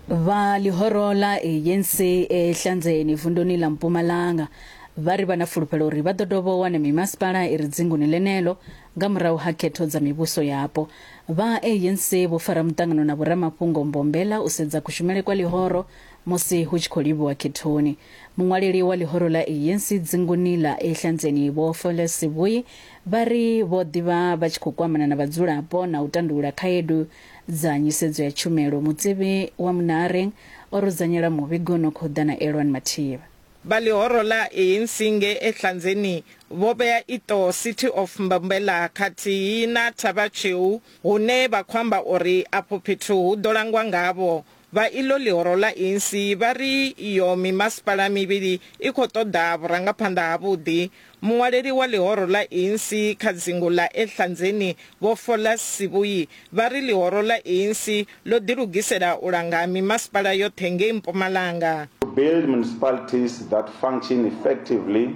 Vha ḽihoro ḽa ANC e Hlanzeni vunduni ḽa Mpumalanga vha ri vha na fulufhelo uri vha ḓo dovha u wana mimasipala i re dzinguni ḽeneḽo nga murahu ha khetho dza mivhuso yapo. Vha ANC vho fara muṱangano na vhoramafhungo Mbombela u sedza kushumele kwa ḽihoro musi hu tshi khou livhiwa khethoni. Muṅwaleli wa ḽihoro ḽa ANC dzinguni ḽa e Hlanzeni Vho Fole Sivhuyi vha ri vho ḓivha vha tshi khou kwamana na vhadzulapo na u tandulula khaedu dza nyisedzo ya tshumelo, mutsivi wa munare o rudzanyela muvhigo no khou ḓa na Elwan Mathiba. Vha ḽihoro ḽa ANC ngei Ehlanzeni vho vhea iṱo City of Mbombela khathihi na Thabva Tsheu hune vha khou amba uri afho fhethu hu ḓo langwa ngavho Vha iḽo ḽihoro ḽa Insi vha ri iyo mimasipala mivhili i khou ṱoḓa vhurangaphanḓa havhuḓi. Muṅwaleli wa ḽihoro ḽa Insi kha dzingu ḽa Ehlanzeni Vho Follas Sibuyi vha ri ḽihoro ḽa Insi ḽo ḓilugisela u langa mimasipala yoṱhe ngei Mpumalanga. To build municipalities that function effectively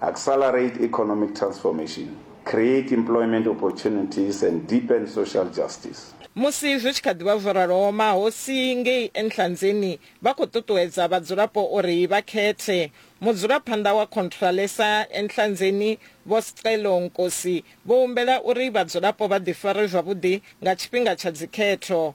Accelerate economic transformation, create employment opportunities and deepen social justice. Musi zwi tshi kha ḓi vha zwo raloho, mahosi ngei Enhlanzeni vha khou ṱuṱuwedza vhadzulapo uri vha khethe. Mudzulaphanḓa wa Khontralesa Enhlanzeni, Vho Scelo Nkosi, vho humbela uri vhadzulapo vha ḓifare zwavhuḓi nga tshifhinga tsha dzikhetho.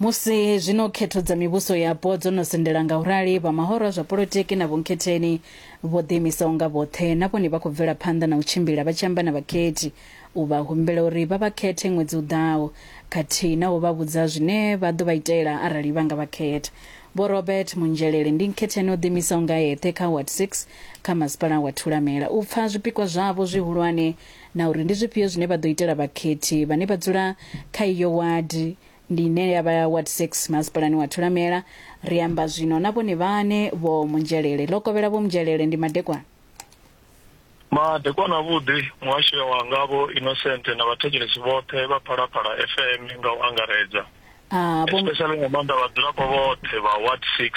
musi zwino khetho dza mivhuso yapo dzo no sendela nga u rali vha mahoro a zwa polotiki na vhunkhetheni vho ḓiimisaho nga vhoṱhe na vhone vha khou bvela phanḓa na u tshimbila vha tshi amba na vhakhethi u vha humbela uri vha vha khethe ṅwedzi u ḓaho khathihi na u vha vhudza zwine vha ḓo vha itela arali vha nga vha khetha vho robert munzhelele ndi nkhetheni o ḓiimisaho nga eṱhe kha ward 6 kha masipala wa thulamela u pfa zwipikwa zwavho zwihulwane na uri ndi zwifhio zwine vha ḓo itela vhakhethi vhane vha dzula kha iyo wadi, ndi ine ya vha Ward 6 Masipalani wa Thulamela. Ri amba zwino na vhone vhaṋe, Vho Munzhelele. Lokovhela Vho Munzhelele ndi madekwana. Madekwana avhuḓi, muhasho wanga Vho Innocent na vhathetshelesi vhoṱhe vha Phalaphala FM nga u angaredza, especially nga maanḓa vhadzulapo vhoṱhe vha Ward 6.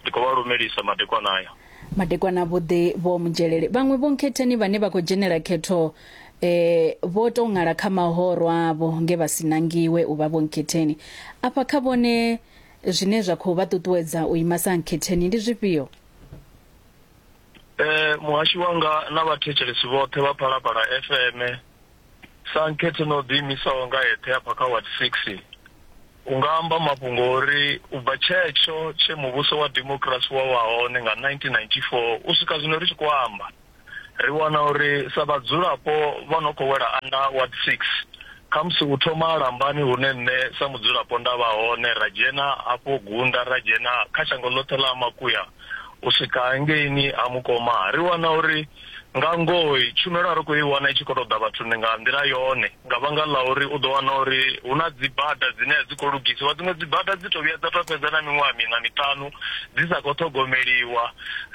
Ndi khou vha lumelisa madekwana aya. Madekwana vhoṱhe vho mu dzhelele. Vhaṅwe vhonkhetheni vhane vha khou dzhenela khetho eh, vho tou ṅala kha mahoro avho nge vha si nangiwe u vha vhonkhetheni. Afha kha vhone zwine zwa khou vha ṱuṱuwedza u ima sa nkhetheni ndi zwifhio? Eh, muhashi wanga na vhathetshelesi vhoṱhe vha Phalaphala FM Sa nkhetho na u ḓiimisaho nga eṱhe hafha kha Ward Six, u nga amba mafhungo o ri u bva tshetsho tshe muvhuso wa demokirasi wa vha hone nga 1994 u swika zwino ri tshi khou amba, ri wana uri sa vhadzulapo vha no khou wela anda Ward Six, khamusi u thoma ha Lambani hune nṋe sa mudzulapo nda vha hone ra dzhena hafho Gunda ra dzhena kha shango ḽoṱhe ḽa Ha Makuya u swika hangeini Ha Mukoma, ri wana uri. Nga ngoho, tshumelo a ri khou i wana i tshi khou tou ḓa vhathuni nga nḓila yone nga vhanga ḽa uri u ḓo wana uri hu na dzibada dzine a dzi khou lugisiwa. Dziṅwe dzibada dzi tou vhuya dza tou fhedza na miṅwaha miṋa miṱanu dzi sa khou ṱhogomeliwa.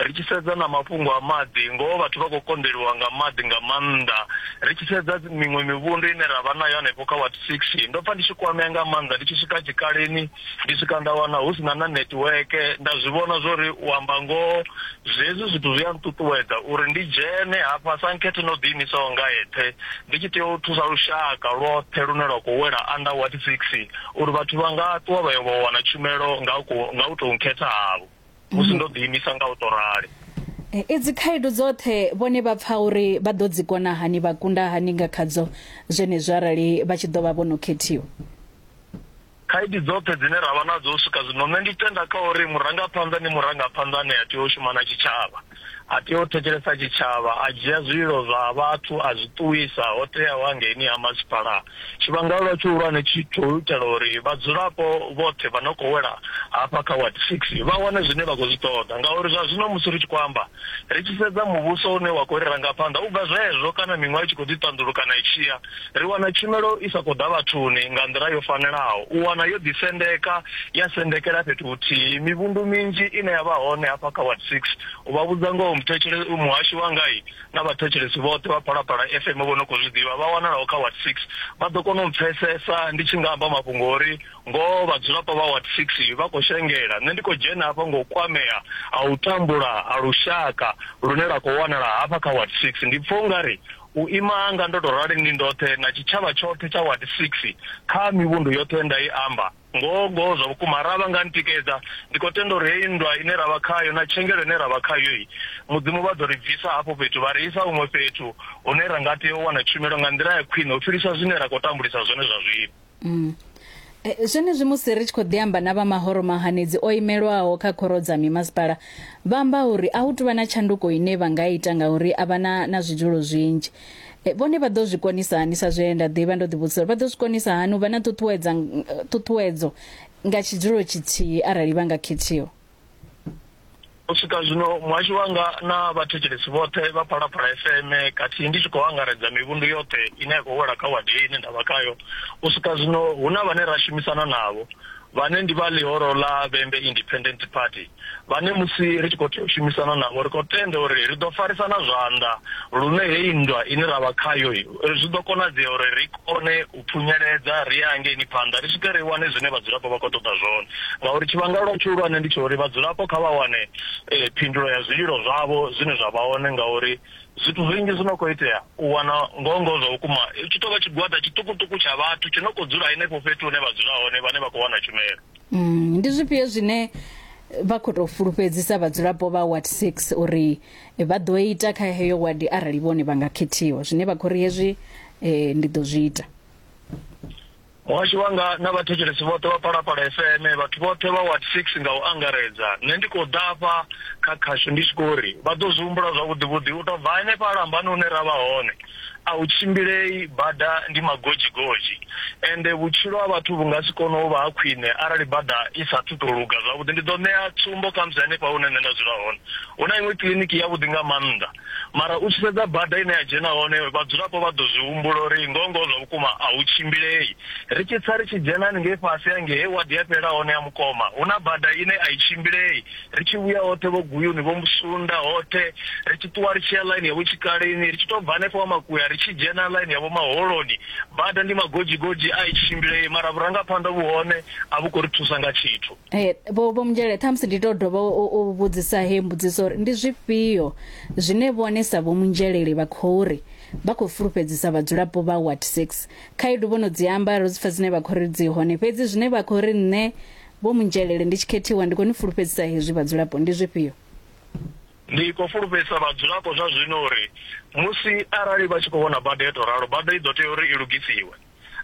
Ri tshi sedza na mafhungo a maḓi, ngoho vhathu vha khou konḓeliwa nga maḓi nga maanḓa. Ri tshi sedza miṅwe mivhundu ine ra vha nayo hanefho kha ward six, ndo pfa ndi tshi kwamea nga maanḓa ndi tshi swika tshikaleni ndi swika nda wana hu si na na netiweke. Nda zwi vhona zwa uri u amba ngoho Zwenezwi zwithu zwi a nṱuṱuwedza uri ndi dzhene hafha sa nkhethe na u ḓiimisaho nga eṱhe, ndi tshi tea u thusa lushaka lwoṱhe lune lwa khou wela Under Ward 6 uri vhathu vha nga ṱuwa vha yo vha wana tshumelo nga u khou nga u tou nkhetha havho, musi ndo ḓiimisa nga u tou rali. E, Idzi khaedu dzoṱhe vhone vha pfa uri vha ḓo dzi kona hani, vha kunda hani nga khadzo zwenezwo arali vha tshi ḓo vha vho no khethiwa? Khaedu dzoṱhe dzine ra vha nadzo u swika zwino, nṋe ndi tenda kha uri murangaphanḓa ndi murangaphanḓa ane a tea u shuma na tshitshavha. A tea u thetshelesa tshitshavha, a dzhia zwililo zwa vhathu a zwi ṱuwisa ho teaho hangeini ha masipala. Tshivhangwelwa tshihulwane tshi tsho u itela uri vhadzulapo vhoṱhe vha no khou wela hafha kha Ward Six vha wane zwine vha khou zwi ṱoḓa ngauri zwa zwino musi ri tshi khou amba, ri tshi sedza muvhuso une wa khou ri ranga phanḓa u bva zwezwo kana miṅwaha i tshi khou ḓi ṱanḓulukana i tshi ya. ri wana tshumelo i sa khou ḓa vhathuni nga nḓila yo fanelaho. U wana yo ḓisendeka ya sendekela fhethu huthihi. Mivhundu minzhi ine ya vha hone hafha kha Ward Six, u vha vhudza ngoho muthetshelesi, muhashi wanga na vhathetshelesi vhoṱhe vha Phalaphala FM vho no khou zwi ḓivha vha wanalaho kha Ward Six vha ḓo kona u mpfesesa ndi tshi nga amba mafhungo o ri ngoho vhadzulapo vha Ward Six vha khou shengela. Nṋe ndi khou dzhena hafha nga u kwamea ha u tambula ha lushaka lune lwa khou wanala hafha kha Ward Six. Ndi pfa u nga ri U ima hanga ndo tou rali ndi ndoṱhe na tshitshavha tshoṱhe tsha Ward Six, kha mivhundu yoṱhe ye nda i amba. Ngoho-ngoho, zwa vhukuma, arali vha nga ntikedza, ndi khou tenda uri heyi nndwa ine ra vha khayo na tshengelo ine ra vha khayo-i, Mudzimu vha ḓo ri bvisa hafho fhethu vha ri isa huṅwe fhethu hune ra nga tea u wana tshumelo nga nḓila ya khwine u fhirisa zwine ra khou tambulisa zwone zwa zwino. Mm. Eh, zwenezwi musi ri tshi khou ḓi amba na vha mahoro mahanedzi o imelwaho kha khoro dza mimasipala vha amba uri a hu tuvha na tshanduko ine vha nga ita ngauri a vha na na zwidzulo zwinzhi Eh, vhone vha ḓo zwi konisa hani sa zwe nda ḓivha ndo ḓivhudzisa uri vha ḓo zwi konisa hani u vha na ṱuṱuwedza ṱuṱuwedzo nga tshidzulo tshithihi arali vha nga khethiwa U swika zwino, muhashi wanga na vhathetshelesi vhoṱhe vha Phalaphala FM khathihi ndi tshi khou angaredza mivhundu yoṱhe ine ya khou wela kha wadi heyi ine nda vha khayo, u swika zwino hu na vhane ra shumisana navho, vhane ndi vha ḽihoro ḽa Vhembe Independent Party, vhane musi ri tshi khou tea u shumisana navho ri khou tenda uri ri ḓo farisana zwanḓa lune heyi nndwa ine ra vha khayo zwi ḓo konadzea uri ri kone u phunyeledza ri ye hangeini phanḓa ri swike ri wane zwine vhadzulapo vha khou ṱoḓa zwone, ngauri tshivhangalo tshihulwane ndi tsha uri vhadzulapo kha vha wane phindulo ya zwililo zwavho zwine zwa vha hone ngauri zwithu zwinzhi zwi no khou itea u wana ngoho ngoho zwa vhukuma hu tshi tou vha tshigwada tshiṱukuṱuku tsha vhathu tshi no khou dzula henefho fhethu hune vha dzula hone vhane vha khou wana tshumelo. Ndi zwifhio zwine vha khou tou fulufhedzisa vhadzulapo vha Ward 6 uri Vha ḓo ita kha heyo wadi arali vhone vha nga khethiwa, zwine vha khou ri, Hezwi ndi ḓo zwi ita. Muhasho wanga na vhathetshelesi vhoṱhe vha Phalaphala FM, vhathu vhoṱhe vha Ward Six nga u angaredza, nṋe ndi khou ḓa afha kha khasho ndi tshi khou ri vha ḓo zwi humbula zwavhuḓi-vhuḓi u tou bva henefha lambani hune ra vha hone. a hu tshimbilei, bada ndi magodzhigodzhi, ende vhutshilo ha vhathu vhu nga si kone u vha ha khwine arali bada i sa athu tou luga zwavhuḓi. Ndi ḓo ṋea tsumbo khamusi hanefha hune nṋe nda dzula hone, hu na iṅwe kiḽiniki yavhuḓi nga maanḓa, mara u tshi sedza bada ine ya dzhena hone, vhadzulapo vha ḓo zwi humbula uri ngoho-ngoho zwa vhukuma a hu tshimbilei. Ri tshi tsa ri tshi dzhena haningei fhasi hangei he wadi ya fhelela hone ya Mukoma, hu na bada ine a i tshimbilei. ri tshi vhuya hoṱhe vho guyuni vho musunda hoṱhe ri tshi ṱuwa ri tshi ya ḽaini yavho tshikaleni ri tshi tou bva hanefho wa makuya ri tshi dzhena ḽaini yavho maholoni bada ndi magodzhigodzhi a i tshimbile mara vhurangaphanḓa vhu hone a vhu khou ri thusa nga tshithu eh, vho vho mdzhele ṱhamusi ndi tou dovha u vhudzisa he mbudziso uri ndi zwifhio zwine vhone sa vho munzheleli vha khou ri vha khou fulufhedzisa vhadzulapo vha wat 6 khaedu vho no dzi amba ro dzi pfa dzine vha khou ri dzi hone fhedzi zwine vha khou ri nṋe Vho Munjelele, Ndi tshi khethiwa, ndi khou ni fulufhedzisa hezwi vhadzulapo. Ndi zwifhio? Ndi khou fulufhedzisa vhadzulapo zwa zwino uri musi arali vha tshi khou vhona bada yo tou ralo, bada i ḓo tea uri i lugisiwe.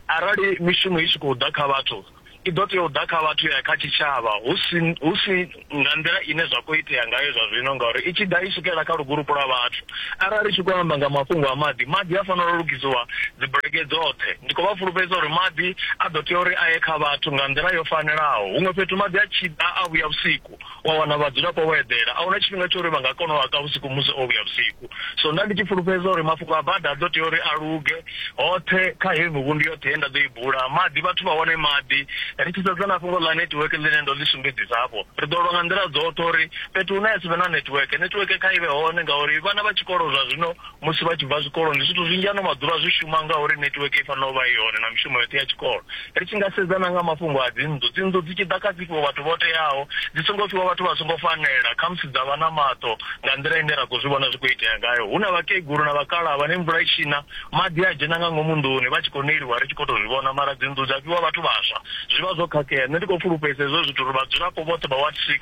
Arali mishumo i tshi khou ḓa kha vhathu, i ḓo tea u ḓa kha vhathu ya ya kha tshitshavha hu si hu si nga nḓila ine zwa khou itea ngayo zwa zwino ngauri i tshi ḓa i swikela kha lugulupu lwa vhathu. Arali ri tshi khou amba nga mafhungo a maḓi, maḓi a fanela u lugisiwa dzibulege dzoṱhe. Ndi khou vha fulufhedzisa uri maḓi a ḓo tea uri a ye kha vhathu nga nḓila yo fanelaho. Huṅwe fhethu maḓi a tshi ḓa a vhuya vhusiku, wa wana vhadzulapo vho eḓela. A hu na tshifhinga tsha uri vha nga kona u a ka vhusiku musi o vhuya vhusiku. So nda ndi tshi fulufhedzisa uri mafhungo a bada a ḓo tea uri a luge. Hoṱhe kha heyi mivhundu yoṱhe ye nda ḓo i bula, maḓi, vhathu vha wane maḓi. Ri tshi sedza na fhungo ḽa netiweke ḽine ndo ḽi sumbedzisa hafho, ri ḓo lwa nga nḓila dzoṱhe uri. fhethu hune ha si vhe na netiweke netiweke kha i vhe hone ngauri vhana vha tshikolo zwa zwino musi vha tshi bva zwikoloni zwithu zwinzhi ano maḓuvha zwi shuma ngauri netiweke i fanela u vha i hone na mishumo yoṱhe ya tshikolo ri tshi nga sedza na nga mafhungo a dzinnḓu dzinnḓu dzi tshi ḓa kha dzi fhiwa vhathu vho teaho dzi songo fhiwa vhathu vha songo fanela khamusi dza vha na maṱo nga nḓila ine ra khou zwi vhona zwi khou itea ngayo hu na vhakegulu na vhakalaha vhane mvula i tshina Maḓi a dzhena nga ngomu nḓuni vha tshi khou neliwa ri tshi khou tou zwi vhona mara dzinnḓu dza fhiwa vhathu vhaswa. Zwi vha zwo khakhea. Nṋe ndi khou fulufhedzisa hezwo zwithu uri vhadzulapo vhoṱhe vha Ward Six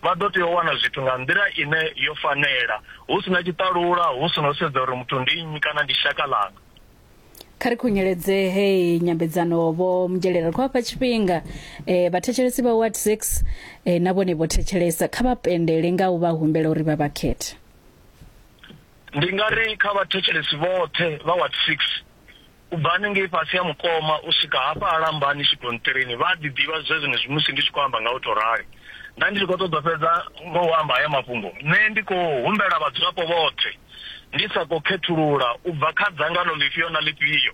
vha ḓo tea u wana zwithu nga nḓila ine yo fanela, hu si na tshiṱalula, hu si na u sedza uri muthu ndi nnyi kana ndi shaka ḽanga. Kha ri khunyeledze heyi nyambedzano Vho Mugyelela. Ri khou vha fha tshifhinga eh, vhathetshelesi vha Ward Six eh, na vhone vho thetshelesa. Kha vha pendele nga u vha humbela uri vha vha khethe. Ndi nga ri kha vhathetshelesi vhoṱhe vha Ward Six, u bva hanengei fhasi ha mukoma u swika hafha ha lambani tshigonṱirini, vha a ḓi ḓivha zwenezwi musi ndi tshi khou amba nga u tou rali. Nda ndi tshi khou ṱoḓa u fhedza nga u amba haya mafhungo, nṋe ndi khou humbela vhadzulapo vhoṱhe, ndi sa khou khethulula u bva kha dzangano ḽifhio na ḽifhio,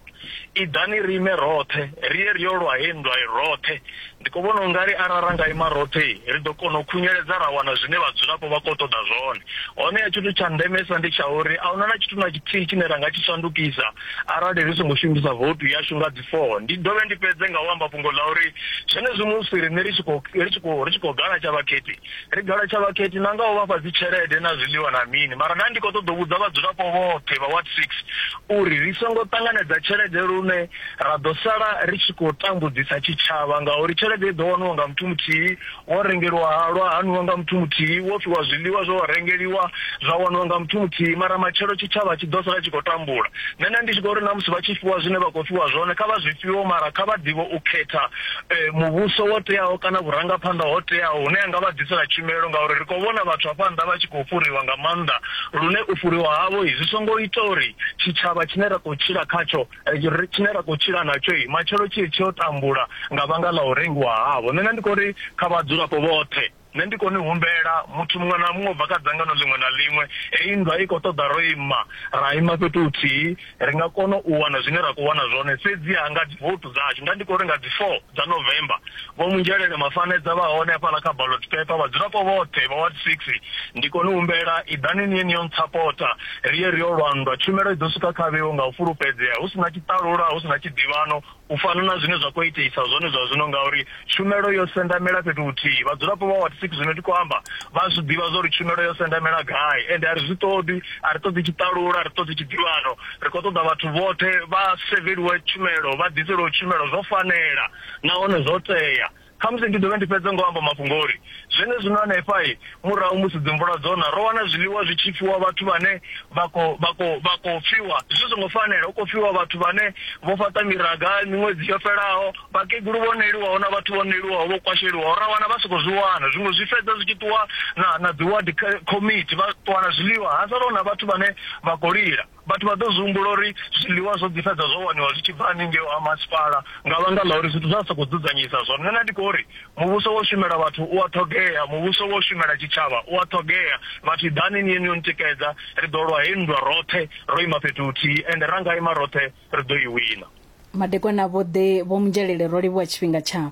Iḓani ri ime roṱhe, ri ye ri yo lwa hei nndwa roṱhe. Ndi khou vhona u nga ri arali ra nga ima roṱhe, ri ḓo kona u khunyeledza ra wana zwine vhadzulapo vha khou ṱoḓa zwone. Honeha tshithu tsha ndemesa ndi tsha uri a hu na na tshithu na tshithihi tshine ra nga tshi shandukisa arali ri songo shumisa voutu yashu nga dzi 4. Ndi dovhe ndi fhedze nga u amba fhungo ḽa uri zwenezwi musi riṋe ri tshi khou ri tshi khou ri tshi khou galatshela vhakhethi, ri galatshwa vhakhethi na nga u vha fha dzitshelede na zwiḽiwa na mini, mara nda ndi khou ṱoḓa u vhudza vhadzulapo vhoṱhe vha Ward 6 uri ri songo ṱanganedza tshelede lune ra ḓo sala ri tshi khou tambudzisa tshitshavha ngauri tshelede i ḓo waniwa nga muthu muthihi, wo rengeliwa halwa ha nwiwa nga muthu muthihi, wo fhiwa zwiḽiwa zwo rengeliwa zwa waniwa nga muthu muthihi mara matshelo tshitshavha tshi ḓo sala tshi khou tambula. Nṋe nda ndi tshi khou ri na musi vha tshi fhiwa zwine vha khou fhiwa zwone kha vha zwi fhiwe mara kha vha ḓivhe u khetha muvhuso wo teaho kana vhurangaphanḓa ho teaho hune ha nga vha ḓisela tshumelo ngauri ri khou vhona vhathu hafha nnḓa vha tshi khou fhuriwa nga maanḓa lune u fhuriwa havho zwi songo ita uri tshitshavha tshine ra khou tshila khatsho tshine ra khou tshila natsho matshelo tshi tshi yo tambula nga vhanga ḽa u rengiwa havho nṋe ndi khou ri kha vhadzulapo vhoṱhe Nṋe ndi khou ni humbela, muthu muṅwe na muṅwe u bva kha dzangano ḽiṅwe na ḽiṅwe, heyi nndwa i khou ṱoḓa ro ima, ra ima fhethu huthihi, ri nga kona u wana zwine ra khou wana zwone, fhedziha nga dzivoutu dzashu, nda ndi khou ri nga dzi four dza November, Vho Munzhelele Mafanedza vha hone hafhaḽa kha ballot paper, vhadzulapo vhoṱhe vha ward six, ndi khou ni humbela, iḓani ni ye ni yo ntsapota, ri ye ri yo lwa nndwa, tshumelo i ḓo swika kha vheo nga u fulufhedzea, hu si na tshiṱalula, hu si na tshiḓivhano, u fana na zwine zwa khou iteisa zwone zwa zwino ngauri tshumelo yo sendamela fhethu huthihi. Vhadzulapo vha Ward Six zwine ndi khou amba vha zwi ḓivha zwa uri tshumelo yo sendamela gai ende a ri zwi ṱoḓi, a ri ṱoḓi tshiṱalula, a ri ṱoḓi tshiḓivhano. Ri khou ṱoḓa vhathu vhoṱhe vha seveliwe tshumelo, vha ḓiselwe tshumelo zwo fanela nahone zwo tea. Khamusi ndi dovhe ndi fhedze nga u amba mafhungo o ri, Zwenezwino hanefha, murahu musi dzimvula dzo na, ro wana zwiḽiwa zwi tshi fhiwa vhathu vhane vha khou, vha khou, vha khou fiwa zwi songo fanela, hu khou fiwa vhathu vhane vho fhaṱa miraga miṅwedzi yo fhelaho, vhakegulu vho neliwaho na vhathu vho neliwaho vho kwasheliwaho, ra wana vha songo zwi wana. Zwiṅwe zwi fhedza zwi tshi ṱuwa na, na dziwadi khomithi, vha ṱuwa na zwiḽiwa, ha sala hu na vhathu vhane vha khou lila. Vhathu vha ḓo zwi humbula uri zwiḽiwa zwo ḓi fhedza zwo waniwa zwi tshi bva haningei ha masipala nga vhanga ḽa uri zwithu zwa sokou dzudzanyisa zwone. Nṋe nda ndi khou ri muvhuso wo shumela vhathu u a ṱhogea, muvhuso wo shumela tshitshavha u a ṱhogea. Vhathu ḓani ni ye ni yo ntikedza, ri ḓo lwa hei nndwa roṱhe ro ima fhethu huthihi ende ra nga ima roṱhe ri ḓo i wina. Madekwana-vhuḓi, Vho Munjalele ro livhuwa tshifhinga tshavho.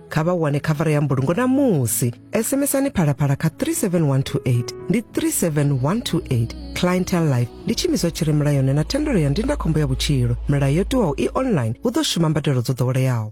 kha vha wane khavara ya mbulungo na musi sms-ani phalaphala kha 37128 ndi 37128 clientel life ndi tshimiswa tshi re mulayoni na thendelo ya ndindakhombo ya vhutshilo milayo yo tiwaho i online hu ḓo shuma mbadelo dzo ḓoweleaho